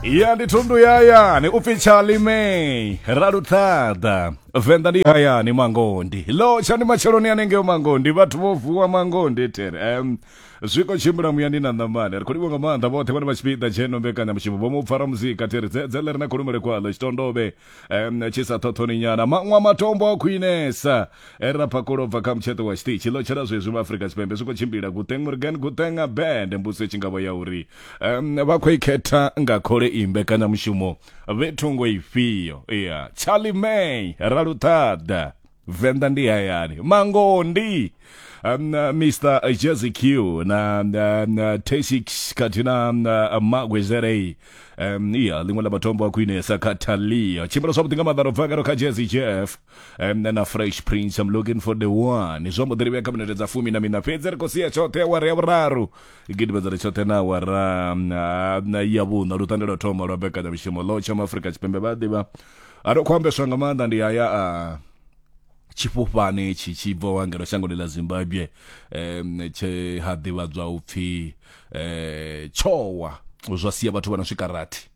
ya ndi thundu ya hayani u pfi chalimei raluṱhaḓa venḓa ndi hayani mangondi lo tsha ndi matsheloni anengeo mangondi vhathu vho vuwa mangondi tere um, zwiko tshimbila muyani na ṋamani ri khou livho nga maanḓa vhoṱhe vhane vha tshipiḓa tsheno mbekanyamushumo vho mu pfara muzika tere dzedze ḽe ri na khulumele kwaḽo tshitondovhe um, tshi sa thothoni nyana maṅwa matombo a khwinesa e ra phakulo bva kha mutsheṱo wa tshiṱitshi ḽo tshela zwezwi vha afrika tshipembe zwi khou tshimbila guteng murgan guteng a band mbuso tshi nga vho ya uri um, vha khou ikhetha nga khole i mbekanyamushumo vhe thungo ifhio ya charlie may ra luṱhaḓa Venḓa ndi hayani mangondi um, uh, Mr Jazzy Q na um, Teshix khathihi na um, uh, Magwe Zerei um, iya ḽiṅwe ḽa matombo a khwinesa kha Talia tshimbila zwavhuḓi nga maḓaro bva karo kha Jazzy Jeff um, na Fresh Prince I'm looking for the one zwo mbo ḓi livhea kha minete dza fumi na mina fhedzi ri khou sia tshoṱhe awara ya vhuraru gidimedza ri tshoṱhe na awara um, uh, ya vhuṋa lutande lwa thoma lwa bekanyamishumo ḽo tshama Afrika Tshipembe vha ḓivha a ri khou ambeswa nga maanḓa ndi haya a tshifhufhane tshi tshi bva wangelo shangoni ḽa zimbabwe um tshe ha ḓivhadzwa u pfhi um tshowa zwa sia vhathu vha no swika rathi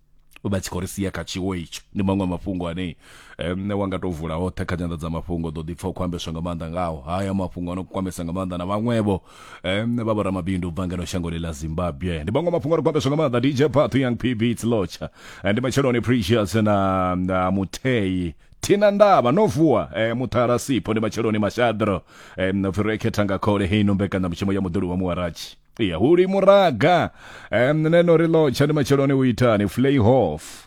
vha tshi khou ri sia kha tshiwo itsho ndi maṅwe mafhungo ane um wa nga tou vula hoṱhe kha nyanḓadzamafhungo ḓo ḓi pfha u khou ambeswa nga maanḓa ngaho haya mafhungo a no kwamesa nga maanḓa na vhaṅwevho um vha vho ramabindu u bva ngeno shangoni ḽa zimbabwe ndi vhaṅwe mafhungo ri khou ambeswa nga maanḓa dj path young pb tslotsha Eh, ndi matsheloni precious na, na muthei thina ndavha no vuwa eh, muṱhara sipho ndi matsheloni mashadro eh, pfi ro ekhetha nga khole heino mbekanyamushumo ya muḓuli wa muwaratshi iya huli muraga eh, neno ri lotsha ndi matsheloni u itani flayhof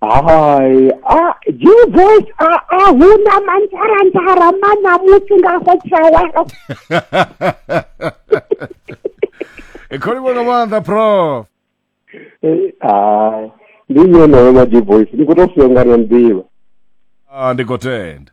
hai a your voice a a huna mantsharantsara mana musi nga go tshawa e kholi vhona maanḓa prof Eh, ah, ndi nyonayo maji voice ndi khou tou funa nga ri a nḓivha ah ndi khou tenda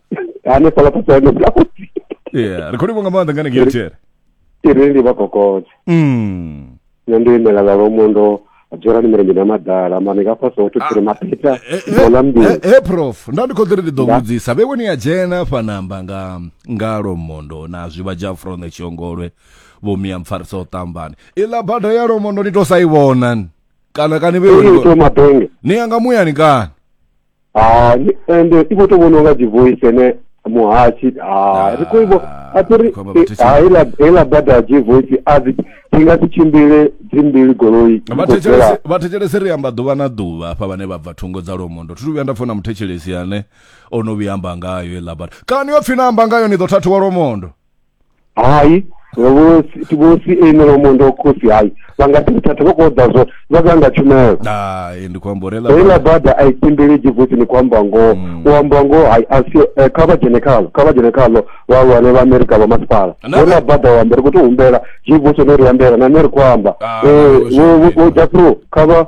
hanefhala pasani blausi yeah ri khou livho nga maanḓa nga nengei there iri ndi vha kokote mm. nṋe ndo imela vhalomo ndo dzorani milenzhe na madala mane ka fhasi hoto tiri mapeta dola mbili he he, prof nda ndi khou ḓiri ndi ḓo Nda. vhudzisa vhe woni ya dzhena fanamba nga nga lomondo na zwivha dzha fronde tshiongolwe vho miya mpfarisa u ṱambani iḽa bada ya lomondo ni to sa i vhona ni. kana kani vhe woni ito mabenge ni ya nga muyani kani Ah, ni- ende i khou tou vhona unga dzi voice ene muhashi ah, ri khou i vho- Ah, a thi ri khomba vhathu tshi- ah, heiḽa heiḽa bada dzi voice a dzi dzi nga si tshimbile dzi mbili goloi dzi khou bvela. vhathetshelesi ri amba ḓuvha na ḓuvha hafha vhane vha bva thungo dza lomondo thi thu vhuya nda funa muthetshelesi ane o no vhuya amba ngayo iḽa bada kana yo pfhi na amba ngayo ni ḓo thathiwa lomondo hai vho vho si ene vha mondo wa khosi hai vha nga ḓi thatha vha khou ḓa zwo vha ḓa nga tshumelo hai ndi khou amba uri heiḽa heiḽa bada bada a i tembelegi futhi ni khou amba ngoho Mm. u amba ngoho hai a si eh, kha vha dzhene khalo kha vha dzhene khalo vhahulwane vha amerika vha masipala Na- heiḽa bada u amba ri khou tou humbela zwi vhuso no ri ambela na nṋe ri khou amba Ah, Eh, wo- wo- wo- wo japro kha vha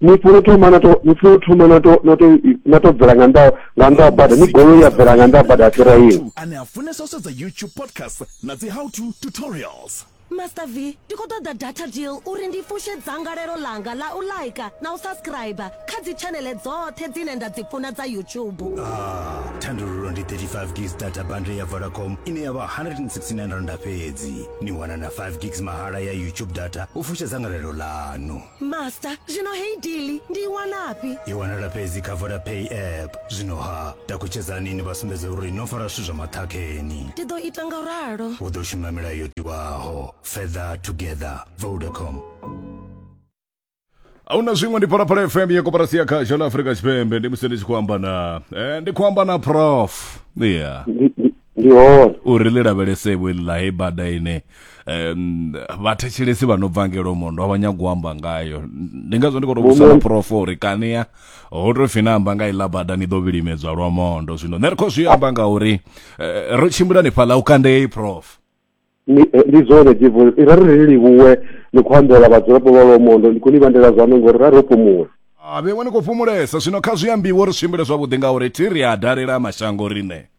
ni funa u thoma nato ni funa u thoma nato nato nato bvela nga nda nga nda bada ni golo ya bvela nga nda bada fhira yini ane a funesa u sedza youtube podcast na dzi how to tutorials master v ndi khou ṱoḓa data deal uri ndi fushe dzangalelo ḽanga ḽa u laika na u subscribe kha dzitshanele dzoṱhe dzine nda dzi funa dza youtube ah, thandululo ndi 35 gigs data bundle ya vodacom ine ya vha 169 randa fhedzi ni wana na 5 gigs mahala ya youtube data u fushe dzangalelo ḽanu master zvino hei dili ndiiwanapi i wanala fhedzi kha vodapay app zwino ha takutshedzani ini vha sumbedza uri no fara zwithu zwa maṱhakheni ndi ḓo ita nga ralo u ḓo shuma milayo yo tiwaho feather together vodacom ahuna zwiṅwe ndi phalaphala fm ya koporasi ya khasho la afurika tshipembe ndi musi ndi tshi khou amba na eh, ndi khou amba na prof yeah ndi hone uri ḽi lavhelesevho iḽi ḽa hei bada ine um vhathetshelesi vha no bva ngelo mondo a vha nyago u amba ngayo ndi ngazwo ndi khou tou vhusa muprofo uri kania ho tou fina amba nga iḽa bada ni ḓo vhilimedzwa lwa mondo zwino nṋe ri khou zwi amba nga uri eh, ro tshimbila ni fhaḽa u kandei prof ni eh, ndi zwone divo i ra ri livhuwe ni khou ambela vhadzulapo vha lwa mondo ndi khou ni vhandela zwaṋo ngori ra ro fhumula a vheṅwe ni khou fhumulesa zwino kha zwi ambiwe ri tshimbile zwavhuḓi ngauri thi ri a dalela mashango riṋe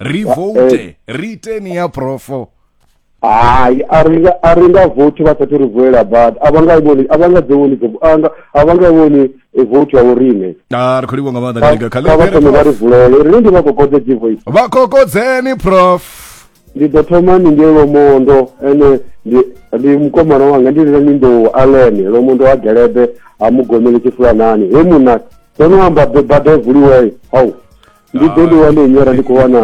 ri vote ri iteni ya profo hayi a ri nga a ri nga vote vha sathu ri vulela badi a vha nga i vhoni a vha nga dzi vhoni dzi a nga a vha nga i vhoni eh, vote ya vho riṋe a ri khou livhuwa nga maanḓa Kha- Kalinga. kha Kalinga, vha thome vha ri Prof. vulele riṋe ndi vha kokodze givoice vha kokodzeni prof ndi ḓo thoma ni ngei lomondo ene ndi ndi mukomana wanga ndi lina ni nḓou alene lomondo ha gelebe ha mugomele tshifulanani he muna ndo no amba be- bada i vuliwei hau ndi ḓo ḽi wane nyora ndi khou wana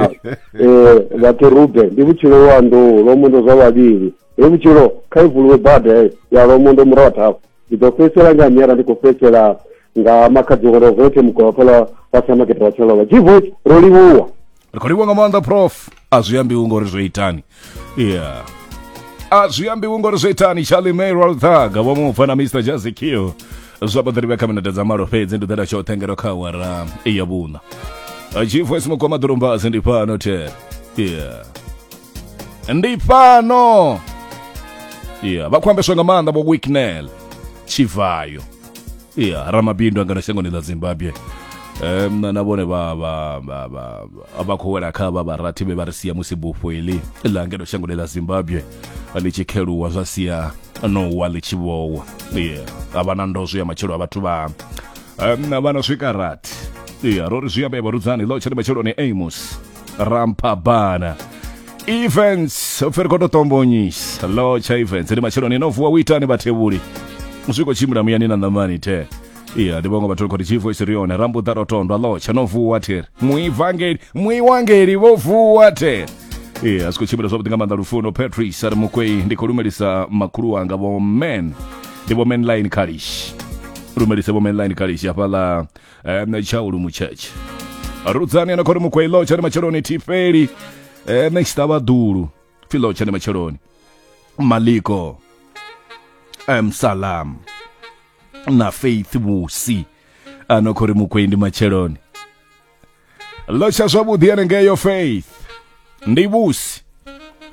um vhakerube ndi vhutshilo lwa nḓou lwa mundo zwa vhavhili he vhutshilo kha i vuluwe bada ya lwa mundo murahu thafu ndi ḓo fhedzisela nga nyora ndi khou fhedzisela nga makhadzi wa lwa vote mugwalaphala wa samakete wa tshalova g vote ro livhuwa ri khou livhuwa nga maanḓa prof a zwi ambiwi ngori zwo itani yeah a zwi ambiwi ngori zwo itani charlie may rolthag vho mu pfa na mr jazikio zwa baḓiri vha kha minete dza malo fhedzi ndi ḓela tshoṱhe ngero kha awara ya vhuṋa chifo esimukwa maḓurumbasi ndi fhano te yeah ndi fhano yeah vha khou ambeswa nga maanḓa vho wicknel chivayo ya ramabindu angano shangoni ḽa zimbabwe um na vhone vha vha vha vha vha- vha khou wela kha vha vharathi vhe vha ri sia musi bufho iḽi ḽa ngeno shangoni ḽa zimbabwe ḽi tshi kheluwa zwa sia no wa ḽi tshi vhowa ye a vha na ndozwo ya matshelo a vhathu vha um, vha na swika rathi ya ro ri zwi ambe vharudzani ḽo tshene matsheloni amos rampabana events oferi khoto tombonyisa lo tsha events ndi matshelo ni no vuwa witani vhathevhuli zwi khou tshimbila muyani na ṋamani the iya ndi vhaṅwe vhathu khoti chivo isiri yone rambuḓa rotondwa lo tsha no vuwa there muivangeli muiwangeli vho vuwa there iya zwi khou tshimbila zwavhuḓi nga maanḓa lufuno patrice ari mukwei ndi khou lumelisa makhulu wanga vho men ndi vho men line kalish lumelise vho men line kalish hafhaḽa um, tshaulu mutshetshe rudzani ana khori mukwei lotsha ni matsheloni thifeli um, next ava ḓulu pfi lotsha ni matsheloni maliko um, salam na faith musi ana khori mukwei ndi matsheloni lotsha zwavhuḓi anengeyo faith ndi vhusi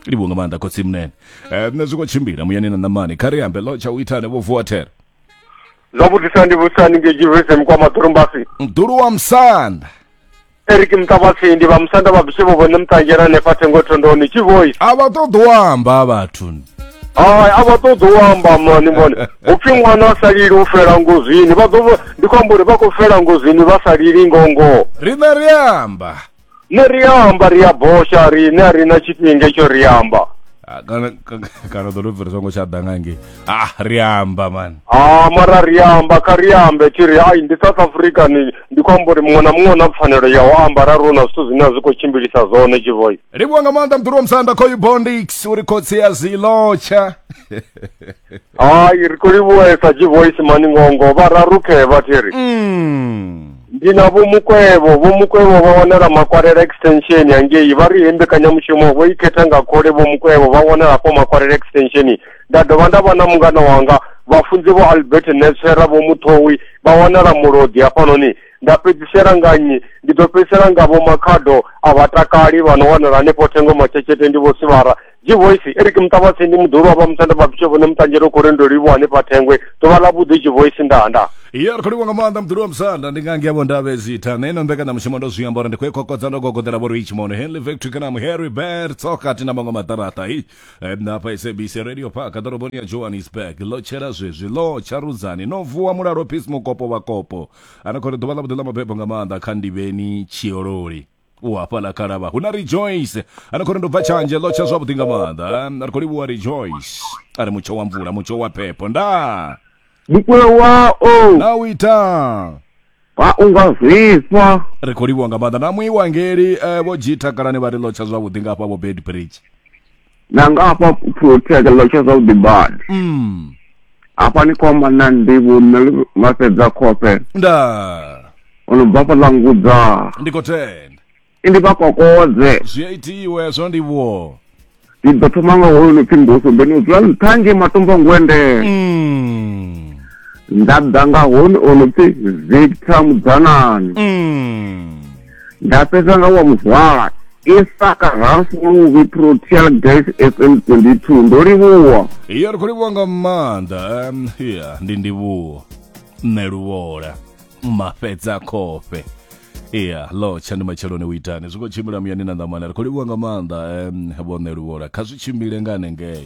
livho nga maanḓa khotsi mnene um, nṋe zwi khou tshimbila muyani na ṋamani kha ri ambe lotsha u itane vho vuwa thera Zwavhuḓi sa ndi vhusa ni ngei Jerusalem kwa maḓorombasi. Mdulu wa Musanda. Eric Mtavasi ndi vha Musanda vha bise vho vhone mutangela hanefha thengo thondoni tshi voice. A vha ṱoḓi u amba vhathu. Hai a vha ṱoḓi u amba mani mani. Upfi ṅwana a sa lili u fela ngozini. Vha ḓo ndi khou amba uri vha khou fela ngozini vha sa lili ngongo. Riṋe ri amba. ne ri amba ri a bosha riṋe a ri na tshifhinga tsho ri amba ah, kana kana ḓo tou bveriswa ngo tsha ḓa nga ngei a ah, ri amba mani a ah, mara ri amba kha ri ambe thi ri ai ndi south africa ni ndi khou amba uri muṅwe na muṅwe na pfanelo ya u amba ra rona zwithu zwine a zwi khou tshimbilisa zwone tshivoi livhuwa nga maanḓa mḓuru wa musanda khoyu bondix uri khotsi ya zilotsha hayi ri khou livhuwa sa gvoice maningongo vha rarukhe vha thi ri Mm. ndi na vhomukwevho vhomukwevho vha wanala makwarela extension yangei vha ri he mbekanyamushumo vho i khetha nga khole vhomukwevho vha wanala hafho makwarela extension nda dovha nda vha na mungana wanga vhafunzi vho albert netswera vho muthowi vha wanala mulodi hafhanoni nda fhedzisela nga nnyi ndi ḓo fhedzisela nga vho makhado a vhatakali vha no wanala hanefho thengo matshetshethe ndi vho sivhara Tshivoisi, e ri ke muṱavhasi ndi muḓulu wa vha musanda vha bishofo ne muṱanzhelo khou ri ndo livhuwa hanefha thengwe ḓuvha ḽa vhuḓi tshivoisi nda nda ya ri khou livhuwa nga maanḓa muḓulu wa musanda ndi nga ngevho ndavhe zitha na ino mbekanyamushumo ndo zwi amba uri ndi khou i kokodza ndo gogodela vho richmond henley victory kana muharry bert tsokati na maṅwe maṱaraṱa i Eh, na hafha sabc radio park ḓoroboni ya johannesburg ḽo tshela zwezwi ḽo tsharudzani no vuwa mulalo peace mukopo vhakopo ana khou ri ḓuvha ḽa vhuḓi ḽa mabebo nga maanḓa kha ndivheni tshiololi u hafhaḽa khalavha hu na rejoice a ni khou ri ndo bva tshanje ḽo tsha zwavhuḓi nga maanḓa ri khou livhuwa rejoice a ri mutsho wa mvula mutsho wa phepho ndaa mukulo wao na u ita wa unga zwifha ri khou livhuwa nga maanḓa na muiwangeli um vho g takalani vha ri ḽo tsha zwavhuḓi nga hafha vho bed bridge na nga hafha protea tsha tsha zwavhuḓi badi mm. hafha ni khou amba na ndivhu nṋe vha fhedza khofhe nda o no bva fhaḽa ngudza ndi khou tenda ndi vha kokodze zwi a itiwe zwo ndivhuwo ndi ḓo thoma nga hoyo no pfhi mbuso mbeni u dzula nṱha nge matombo ngwende mm. nda ḓa nga hone o no pfhi victor mudzanani mm. nda fhedza nga wa muzwala isaka hafuluvi proteal gas fm 22 ndo livhuwa iya ri khou livhuwa nga maanḓa em, iya ndi ndivhuwo nṋe luvhola mafhedza khofhe iya lotsha ndi matsheloni u itani zwi khou tshimbila muyani na ṋamana ri khou livhuwa nga maanḓa em, vho nṋe luvhola kha zwi tshimbile nga hanengei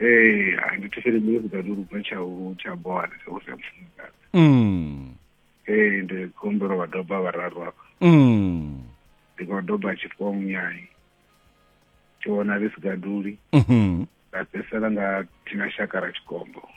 ee hai ndi thetshelele music a lurubva tsha u tsha bola tsha u sa mufumakadzi mm. ee ndi khou humbela vha doba vhararu hafha Mm. ndi khou doba tshifhiwa munyai tshivhonali sigaduli Mhm. ra fhedzisela nga thina shaka ra tshikombo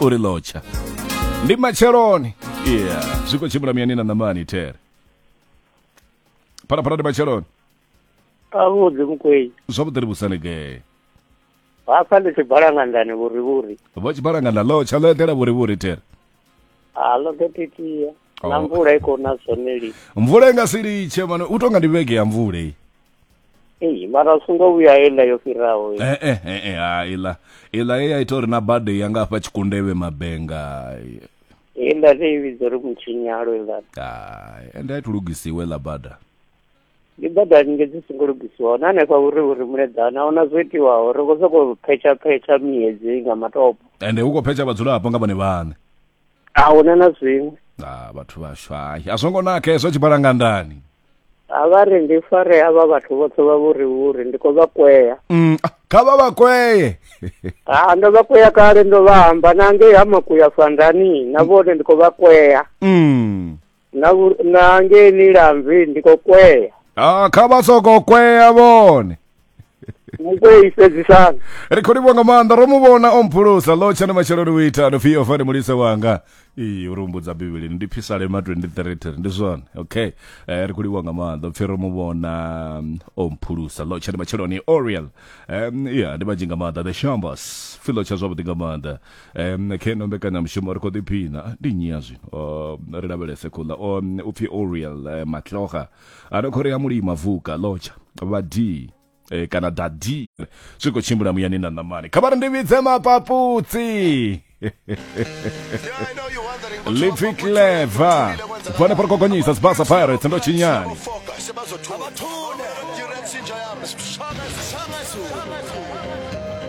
u ri lotsha ndi matsheloni yeah zwi khou tshimbila miyani na ṋamani there phalaphala ndi matsheloni avhuḓi mukwei zwavhuḓi ri vhusanegee hafha ndi tshibhalangandani vhurivhuri vho tshibhalanganda lotsha ḽo eḓela vhurivhuri there a ḽo ḓo titiya na Oh. mvula i khou na zwone lini mvula i nga si litshe mane u tonga ndi vhege ya mvula iyi ei mara u songo vhuya heiḽa yo fhiraho i. Eh, eh, eh, eh, ha, iḽa iḽa ye ya ita uri na bade yanga hafha tshikundevhe mabenga heiḽa ne i vhidza uri mutshinyalo iḽa Hai, ende a i lugisiwe ḽa bada ndi bada nge dzi songo lugisiwaho na hanefha vhuri vhuri muleḓana ahuna zwo itiwaho ri khou sokou phetsha phetsha miedzi nga matopo ende hu khou phetsha vhadzulapo nga vhone vhaṋe a huna na zwiṅwe ah vhathu vhashu hai a zwo ngo naka hezwo tshi bala nga ndani a vha ri ndi fare havha vhathu vhoṱhe vha vhuri vhuri ndi khou vha kwea mm, ah, kha vha vha kweye ha ndo vha kwea kale ndo vha amba na ngei ha makuya fandani na vhone ndi khou vha kwea mm. na na ngei ni lambi ndi khou kwea ah kha vha soko kwea vhone mukwei fhedzisana ri khou livho nga maanḓa ro mu vhona o mphulusa lo tshani masheloni u ita nopfi yo fani mulise wanga iyi uri umbudza bivhilini ndi phisalema 23 ndi zwone okay eh, ri khou livho nga maanḓa upfi ro mu vhona mm, o mphulusa lo tshani masheloni oriel um, ya ndi manzhi nga maanḓa the shambas filo tsha zwavhuḓi nga maanḓa um khe no mbekanyamushumo ri khou ḓiphina ndi nnyi ya zwino uh, ri lavhelese khula o um, u pfi oriel uh, eh, matloga a ri khori ya mulima vuka lotsha vha d eh, kana da d zwi khou tshimbila muyani na ṋamani kha vha ri ndi vhidze mapaputsi lipfi cleva vhone pa ri khou gonyisa sibasa pirates ndo tshinyani